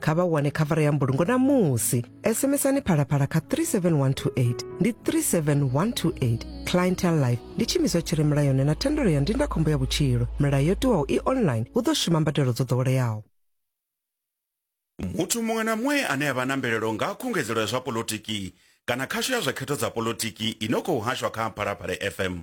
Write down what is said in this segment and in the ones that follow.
kha vha wane khavara ya mbulungo namusi sms-ani phalaphala kha 37128 ndi 37128 clientel life ndi tshimiswa tshi re mulayoni na thendelo ya ndindakhombo ya vhutshilo milayo yo tiwaho i online hu ḓo shuma mbadelo dzo ḓoweleaho muthu muṅwe na muṅwe ane a vha na mvelelo nga khungedzelo ya zwa polotiki kana khasho ya zwa khetho dza polotiki i no khou hashwa kha phalaphala fm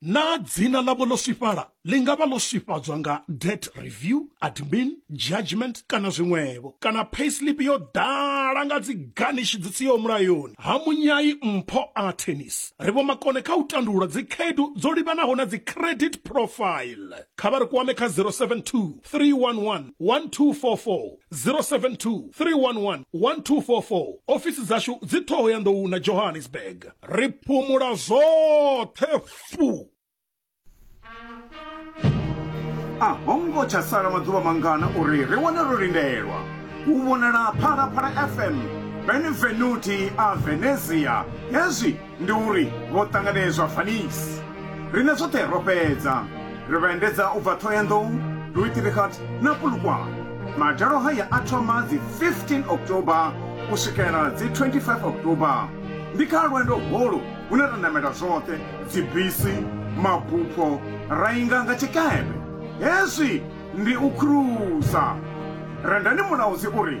Naa dzina ḽavho ḽo swifhala ḽi nga vha ḽo swifhadzwa nga debt review, admin, judgement kana zwiṅwevho? Kana payslip yo ḓala nga dzi garnish dzi siho mulayoni? Ha munyai mpho a tennis ri vhomakone kha u tandulula dzikhaedu dzo livhanaho na dzi credit profile. Kha vha ri kwame kha 072 311 1244. 072 311 1244 ofisi dzashu dzi ṱhoho ya nḓou na johannesburg ri phumula zwoṱhe fu a ho ngo tsha sala maḓuvha mangana uri ri wane ro lindelwa u vhonala phalaphala fm benevenuti a venezia hezwi Ndi uri vho ṱanganedzwa Vanice. Riṋe zwoṱhe ro fhedza ri vha endedza u bva Thohoyandou, Rooiterigat na Polokwane. Madalo haya a thoma dzi 15 October u swikela dzi 25 October. Ndi kha lwendo holu hune ra namela zwoṱhe, dzibisi, mabupho, ra inga nga tshikepe. Hezwi ndi u khurusa. Rendani Mulaudzi u ri,